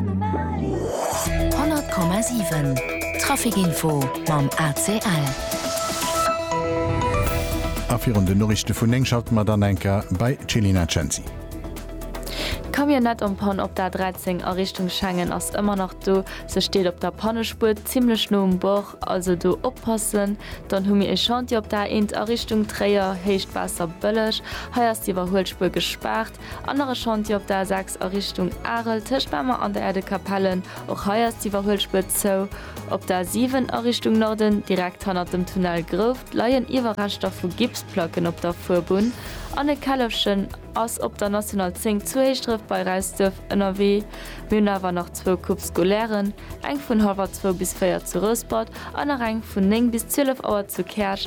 100,7 Trafic Info mam ACL. A virun den Noriichte vun 9 schalte mer dann enk er bei d'Chelina Cenci. D'Camionnette en panne op der 13 a Richtung Schengen ass ëmmer nach do. Se steet op der Pannespuer zimmlech no um Bord, also do oppassen. Dann hu mir ee Chantier op der A1 a Richtung Tréier, Héicht Waasserbëlleg. Hei ass d'Iwwerhuelspuer gespaart. Anere Chantier op der A6 a Richtung Arel tëscht Mamer an der Erdekapelle, och hei ass d'Iwwerhuelspuer zou. Op der A7 a Richtung Norden, direkt hannert dem Tunnel Grouft, leien Iwwerreschter vu Gipsplacken op der Fuerbunn an e Källefchen ass op der National 10 zu Héischdref bei Räisduerf ënnerwee. Mir hunn awer nach zwou Coupes scolairen, eng vun hallwer zwou bis véier zu Rouspert an nach eng vun néng bis zwielef Auer zu Käerch.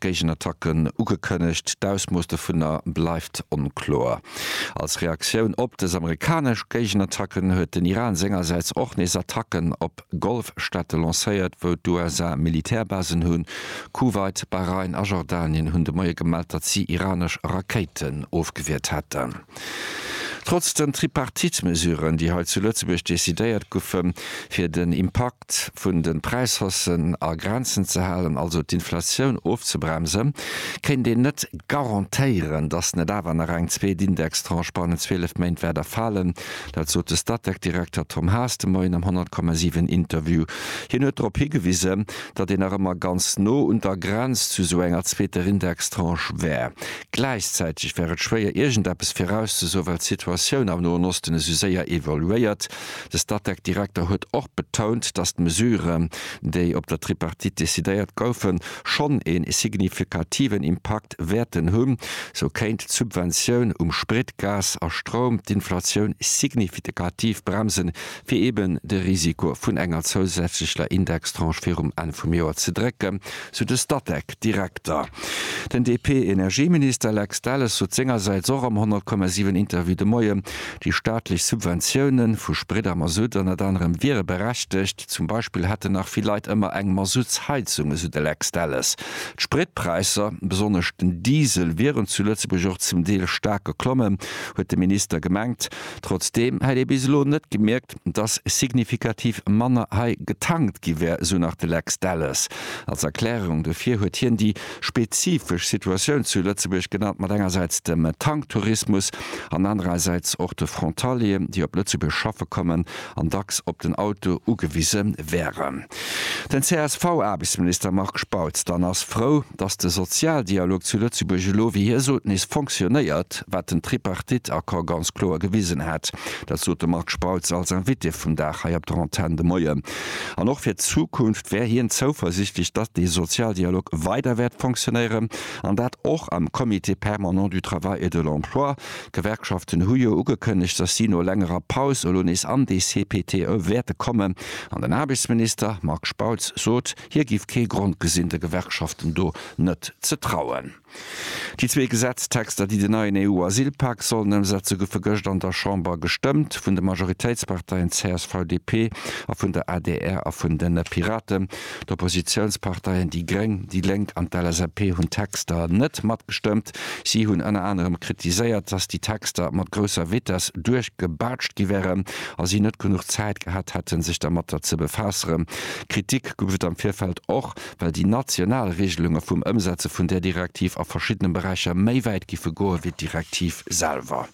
Géigenattacken ugekënnegt, d'Ausmooss dovunner bleift onkloer. Als Reaktioun op dës amerikanesch Géigenattacken huet den Iran sengersäits och nees Attacken op Golfstaate lancéiert, wou d'USA Militärbasen hunn. Kuwait, Bahrain a Jordanien hunn de Moie gemellt, datt si iranesch Rakéiten ofgewiert hätten. Trotz den Tripartite-Mesuren, déi hei zu Lëtzebuerg decidéiert goufen, fir den Impakt, D'Effekt vun de Präishaussen a Grenzen ze halen, also d'Inflatioun ofzebremsen, kéint een net garantéieren, datt net awer nach eng zweet Indextranche bannent 12 Méint wäert erfalen. Dat sot de Statec-Direkter Tom Haas de Moien am 100,7 Interview. Hien huet drop higewisen, datt een nach ëmmer ganz no un der Grenz zu esou enger zweeter Indextranche wär. Gläichzäiteg wär et schwéier, iergendeppes virauszesoen, well d'Situatioun am Noen Osten esou séier evoluéiert. De Statec-Direkter huet och betount, datt d'Mesuren, déi op der Tripartite decidéiert goufen, schonn ee signifikativen Impakt wäerten hunn. Sou kéint d'Subventioun um Sprit, Gas a Stroum d'Inflatioun signifitkativ bremsen, fir eben de Risiko vun enger zousätzlecher Indextranche virum Enn vum Joer ze drécken, sou de Statec-Direkter. Den DP-Energieminister Lex Delles sot sengersäits och am 100 Komma 7 Interview de Moien, déi staatlech Subventioune vu Sprit a Masutt ënnert anerem wiere berechtegt. Zum Beispill hätten nach vill Leit ëmmer eng Masuttsheizung, esou de Lex Delles. D'Spritpräisser, besonnesch den Diesel, wieren zu Lëtzebuerg och zum Deel staark geklommen, huet de Minister gemengt. Trotzdeem hätt ee bis elo net gemierkt, dass signifikativ manner hei getankt gi wär, esou nach de Lex Delles. Als Erklärung dofir huet hien déi spezifesch Situatioun zu Lëtzebuerg genannt, mat engersäits dem Tanktourismus an anerersäits och de Frontalieren, déi op Lëtzebuerg schaffe kommen an dacks op den Auto ugewise wären. Den CSV-Aarbechtsminister Marc Spautz dann ass frou, dass de Sozialdialog zu Lëtzebuerg elo, wéi hie sot, nees fonctionéiert, wat den Tripartite-Accord ganz kloer gewisen hätt. Dat sot de Marc Spautz als Invité vum Dag hei op der Antenn de Moien. An och fir d'Zukunft wär hien zouversiichtlech, datt dee Sozialdialog weider wäert fonctionéieren, an dat och am Comité permanent du travail et de l'emploi. D'Gewerkschaften hu jo ugekënnegt, datt si no längerer Paus elo nees an dee CPTE wäerte kommen. An den Aarbechtsminister Marc Spautz sot, hie géif kee Grond gesinn, de Gewerkschaften do net ze trauen. Déi zwee Gesetztexter, déi den neien EU-Asylpak sollen ëmsetze goufe gëscht an der Chamber gestëmmt, vun de Majoritéitsparteien CSV-DP a vun der adr a vun de Piraten. D'Oppositiounsparteien déi gréng, déi lénk an d'LSAP hunn d'Texter net matgestëmmt. Si hunn ënner anerem kritiséiert, datt déi Texter mat grousser Vitess duerchgebaatscht gi wären a si net genuch Zäit gehat hätten, sech dermatter ze befaasseren. Kritik gouf et am Virfeld och well déi national Regelunge vum Ëmsetze vun där Direktiv a verschiddene Beräicher méi wäit géife goe wéi d'Direktiv selwer.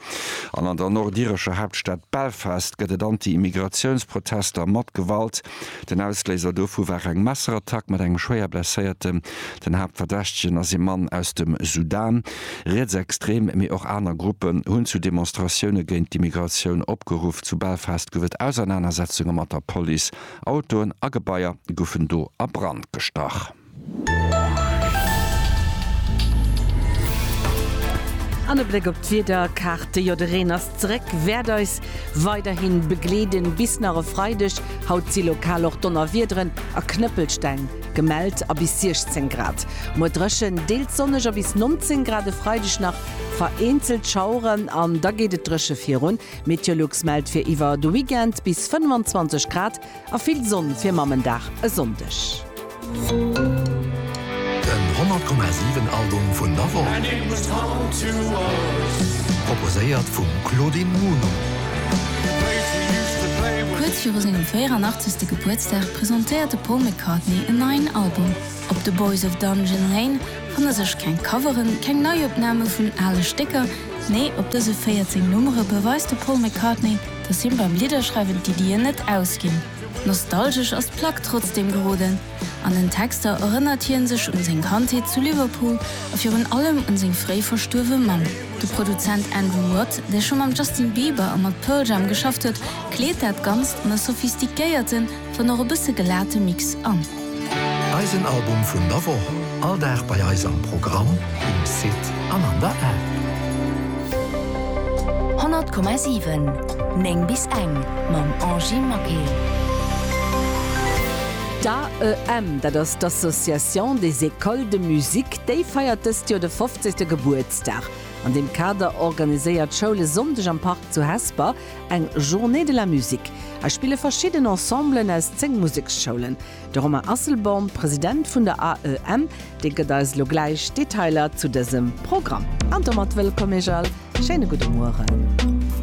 An an der nordirescher Haaptstad Belfast gëtt et Anti-Immigratiouns-Protester mat Gewalt. Den Ausléiser dovu war eng Messerattack mat engem schwéier Blesséierten. Den Haaptverdächtegen ass ee Mann aus dem Sudan. Rietsextrem, mee och aner Gruppen hunn zu Demonstratioune géint d'Immigratioun opgeruff. Zu Belfast gouf et Ausernanersetzunge mat der Police. Autoen a Gebaier goufen do a Brand gestach. An e Bléck op d'Wiederkaarte, jo de Reen ass zeréck, wäert eis weiderhi begleeden bis nach e Freideg. Haut si lokal och Donnerwiederen a Knëppelsteng gemellt a bis 16 Grad. Muer dréchen, deels sonneg a bis 19 Grad e Freideg nach vereenzelt Schaueren an da geet et dréche virun. Meteolux mellt fir iwwer de Weekend bis 25 Grad a vill Sonn fir Mammendag e Sonndeg. Den 100,7 Album vun der Woch, proposéiert vum Claudine Muno. Kuerz viru sengem 84. Gebuertsdag presentéiert de Paul McCartney en neien Album. Op The Boys of Dungeon Lane fanne sech keng Coveren, keng Neiopname vun ale Stécker, Nee, op dëse 14 Nummere beweist de Paul McCartney, datt him beim Lidderschreiwen d'Iddien net ausginn. Nostalgesch ass d'Plack trotzdeem geroden. An den Texter erënnert hie sech un seng Kandheet zu Liverpool a virun allem un seng fréi verstuerwe Mamm. De Produzent Andrew Watt, dee scho mam Justin Bieber a mat Pearl Jam geschafft huet, kleet dat Ganzt an e sophistiquéierten, Dann och e bësse gelate Mix an. Eisen Album vun der Woch, all Dag bei eis am Programm, um Site an an der App. 100,7, 9 bis eng, mam Angie Maquet. D'AEM, dat ass d'Association des Écoles de Musique, déi feiert dëst Joer de fofzegste Gebuertsdag. An deem Kader organiséiert d'Schoul e Sonndeg am Park zu Hesper, Eng Journée de la musique. Hei spille verschidden Ensemblen aus 10 Museksschoulen. De Romain Asselborn, President vun der AEM, dee gëtt eis elo gläich Detailer zu dësem Programm. An domat wëllkomm Iech all. Schéine gudde Mueren.